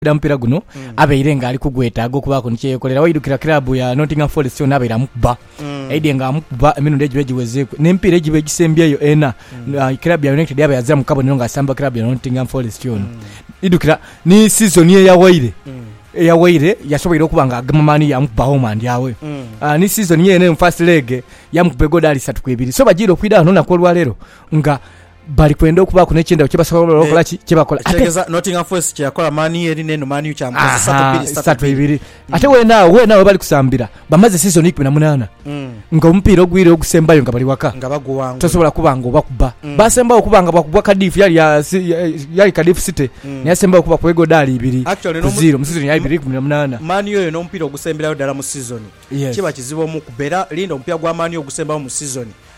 Omupiira mupiira guno abaire nga ali kugwetaaga okubaaku ni kye yeekolera. Waidukira kiraabu ya Nottingham Forest yona abaire amukuba. Aidhie nga amukuba emirundi egiba egiwezeeku. N'emipiira egiba egisembyeyo ena, kiraabu ya United yaaba yaziramu kabonero ng'asamba kiraabu ya Nottingham Forest yona. Idukira ni sizoni eyawaire, eyawaire yasoboire okuba nga agema mani yaamukuba home and away. Ni sizoni yeene eno first leg yaamukuba egodaali isatu ku ibiri. So bajiire okwidha ghano olunaku olwaleero nga. bali kwenda okubaaku n'ekyendaghulo kye basobola Eh, okola ki, kye bakola. Ate Ekitegeeza Nottingham Forest kye yakola Man U eri n'eno Man U kyamukosa satu Aha, bbiri satu satu bbiri. bbiri ate weene agho weene agho webali kusambira bamaze sizoni ikumi na munaana Mm. nga omupiira ogwire ogusembayo nga bali waka Nga baguwangula. tosobola kuba nga obakuba Mm. basembayo okuba nga bwakubwa kadifu yali ya si- ya- yali kadifu city Mm. naye asembayo okuba kuba egodaali ibiri Actually, ku n'omu- zero mu sizoni ya ibiri ikumi na munaana Man U oyo n'omupiira ogusemberayo ddala mu sizoni Yes. kiba kizibu omukuba era linda omupiira gwa Man U ogusembayo mu sizoni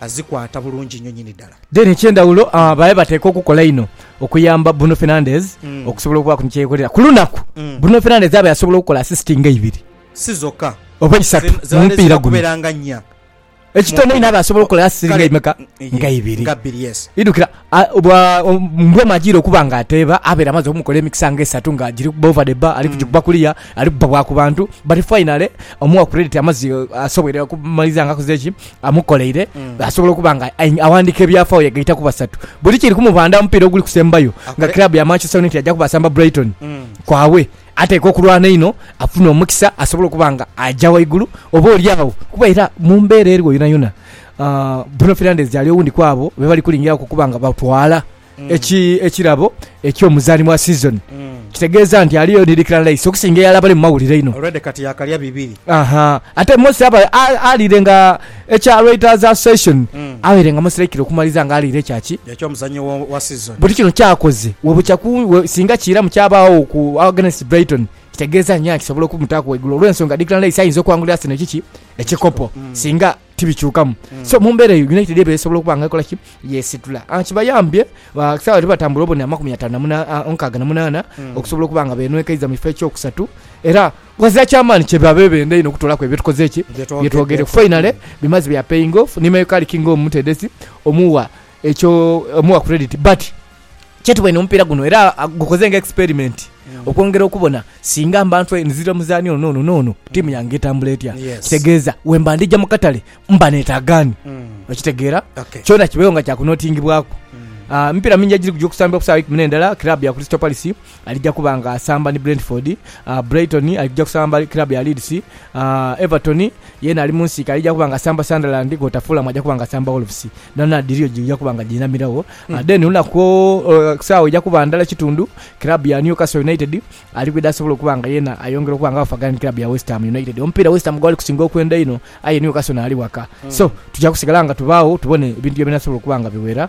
azikwata bulungi inho nyini dala. Then ekyendhawulo babe bateeka okukola einho okuyamba Bruno Fernandes okusobola okubaaku ni kyeyekolera. Ku lunaku Bruno Fernandes abe asobola okukola assist nga ibiri. Si zoka. Oba isatu mu mupiira guno. Ekitono einho abe asobola okukola assist nga imeka? Nga ibiri. Idhukira Mbwa omu ajiire okuba nga ateeba abaire amaze okumukola emikisa nga esatu nga giri kubba over the bar, ali kugikuba kuliya, ali kubba bwa ku bantu but finally omuwa credit amaze asoboire okumaliza nga akoze ki amukoleire asobola okuba nga aghandiika ebyafaayo yagaita ku basatu. Buli kiri kumubandha omupiira oguli kusembayo nga club ya Manchester United aja kuba asamba Brighton kwabwe ateekwa okulwana einho afune omukisa asobole okuba nga aja ghaigulu oba olyagho kuba era mu mbeera eriwo yonayona Bruno Fernandes ali owundi ku abo be bali kulingiriraku okuba nga batwala ekirabo eky'omuzaani wa sizoni. Kitegeeza nti aliyo ni Declan Rice okusinga eyali abali mu mawulire einho. Already kati yaakalya bibiri. Ate Mosi aba aliire nga ekya Writers Association abaire nga Mosi Raikire okumaliza nga aliire ekya ki? Eky'omuzannyi wa sizoni. Buti kino ky'akoze webukya singa kiiramu kyabaagho ku against Brighton kitegeeza nyaa kisobola okumutaaku waigulu olw'ensonga Declan Rice ayinza okuwangulira Arsenal ekiki? Ekikopo singa. tibikyukamu. So mu mbeera eyo United eba esobola okuba nga ekola ki? Yeesitula. Ah, kibayambye ah, ku saawa lwebatambula obone amakumi ataano na muna- ah, omukaaga na munaana okusobola okuba nga beenwekaiza mu kifo ekyokusatu era ghazira kya maani kye baba bebenda einho okutoolaku ebyo bye tukoze eki Bye twogedde. bye twogedeku finally bimaze bya paying off ni Mayo Karic nga omutendesi omuwa ekyo omuwa credit but Kyetuboine mu mupiira guno era gukoze nga experimenti okwongera okubona singa mba ntwei nzira omuzaani ono n'ono n'ono ttiimu yange etambula etya. Kitegeeza wemba ndija mu katale mba neetaaga ani? Okitegeera? Kyona kibeewo nga kya kunotingibwaku. Emipiira mingi egiri kugya okusambibwa ku saawa eikumi n'endala, kiraabu ya Crystal Palace, alija kuba nga asamba ni Brentford, Brighton alija kusamba ni club ya Leeds, Everton yeena ali mu nsiike alija kuba nga asamba Sunderland kwota Fulham aja kuba nga asamba Wolves. Dhona dhiriyo dhija kuba nga dhiinamiragho. Then lunaku o- saawa eja kuba ndala kitundu, club ya Newcastle United ali kwidha asobole okuba nga yeena ayongera okuba nga afagana ni club ya West Ham United. Omupiira West Ham gwali kusinga okwenda einho aye Newcastle naali waka. So tuja kusigala nga tubaagho tubone ebintu bye binasobola okuba nga biwera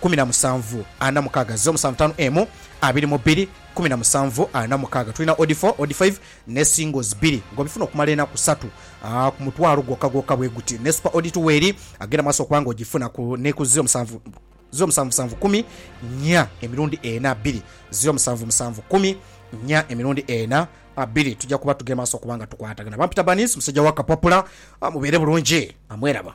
kumi na musanvu ana mukaaga ze omusanvu taanu emu abiri mu bbiri kumi na musanvu ana mukaaga tulina odi fo odi faive ne singles bbiri nga obifuna okumala enaku satu ku mutwalo gwokka gwokka bwe guti ne supa odi tuwe eri agenda mu maaso okuba nga ogifuna ku ne ku ze omusanvu ze omusanvu musanvu kumi nya emirundi ena bbiri ze omusanvu musanvu kumi nya emirundi ena bbiri tujja kuba tugema maaso okuba nga tukwatagana. Bampita Banis musajja wa kapapula mubeere bulungi amweraba.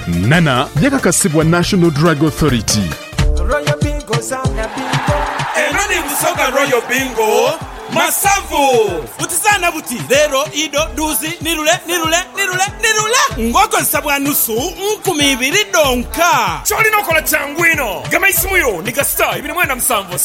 Nana yakakasibwa National Drug Authority. Royal Bingo zaana bingo. Eno ni Busoga Royal Bingo Masavu. Buti zaana buti, leero, ido, duuzi, ni lule, ni lule, ni lule, ni lule ng'okozesa bwa nusu nkumi ibiri dhonka. Ky'olina okola kyangu inho. Gema eisimu yo ni kasita ibiri mwenda musanvu.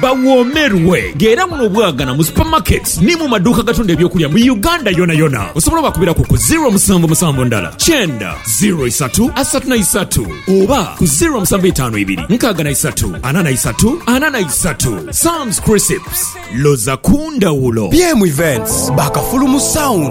Bawoomerwe nga era muno bwagana mu supermarkets ni mu maduuka agatunda eby'okulya mu Uganda yonayona. Osobola obakubiraku ku ziro musanvu musanvu ndala kyenda ziro isatu asatu na isatu oba ku ziro musanvu itaanu ibiri nkaaga na isatu ana na isatu ana na isatu. Sam's Crisps, loza ku ndhawulo! BM Events baakafulumu sound.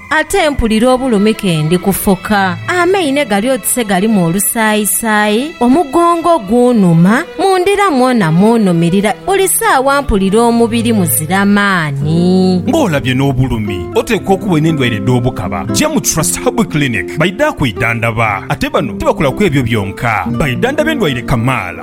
Ate mpulira obulumi ke ndi kufoka. Amaine gali oti se galimu olusaayisaayi, omugongo gunhuma, mu ndira mwona munhumirira, buli saawa mpulira omubiri muzira maani. Nga olabye n'obulumi, oteekwa okuba olina endwaire edh'obukaba, ja mu Trust Herbal Clinic baidha kwidhandaba. Ate bano tibakola ku ebyo byonka, baidhandhaba endwaire kamaala.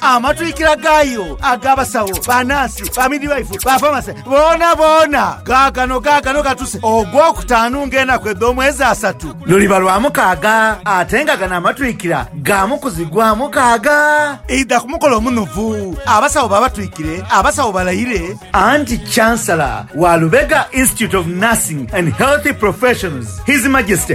Amatwikira gaayo ag'abasawo, banaasi, bamidivaifu, bafamase, boonaboona gaagano, gaagano gatuse Ogwokutaanu ng'enaku edh'omwezi asatu. Luliba lwa mukaaga, ate nga gano amatwikira ga mu kuzigwa mukaaga. Idha ku mukolo omunuvu, abasawo babatwikire, abasawo balayire. Anti Chancellor wa Lubega Institute of Nursing and Healthy Professions, His Majesty,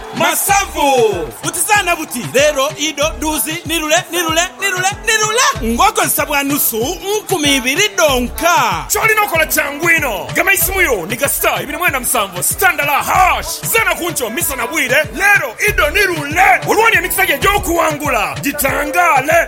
Masavu! Butizaana buti, Leero, idho, dhuuzi, ni lule, ni lule, ni lule, ni lule! Ng'okozesa bwa nusu nkumi ibiri dhonka. Ky'olina okola kyangu inho, gema eisimu yo ni ga star ibiri mwenda musanvu star ndala hash. Zaana ku nkyo, misa na bwire, Leero, idho, ni lule! Olwo oli emikisa gyo egy'okuwangula gitangaale!